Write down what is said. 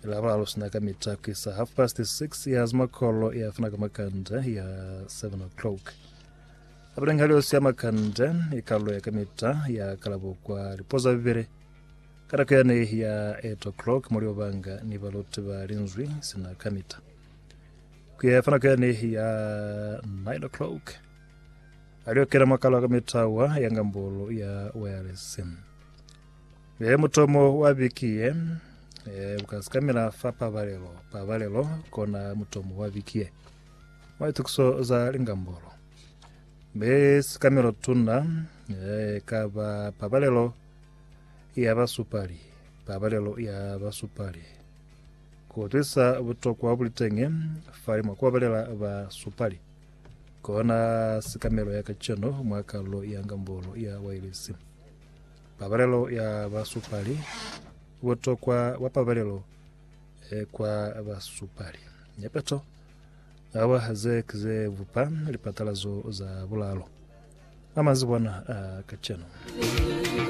Lavuralo sina ka mita ku isa half past 6 ya zimakolo ya fana ka makanda ya 7 o'clock abuleng hali osi ya makanda ikalo ya ka mita ya kalabo kwa lipoza bibele ka nako yane ya 8 o'clock muli obanga ni baloti ba linzwi sina ka mita ku ya fana ka yane ya 9 o'clock aliokela makalo ka mitawa ya ngambolo ya wireless He mutomo wa biki ye, e, ukazikamela fa pabalelo. Pabalelo kona mutomo wa biki ye. Mwa itukiso za lingambolo, be sikamelo tuna e, ka ba pabalelo ya basupali, pabalelo ya basupali, kutwisa butokwa bulitenge fali mwa kubabalela basupali. Kona sikamelo ya kaceno mwa kalulo ya ngambolo ya wailesi. Pabalelo ya basupali, Butokwa bwa pabalelo e kwa basupali. Nepeto ya ba ze ze bupa lipatalazo za bulalo ba mazibwana a kacenu.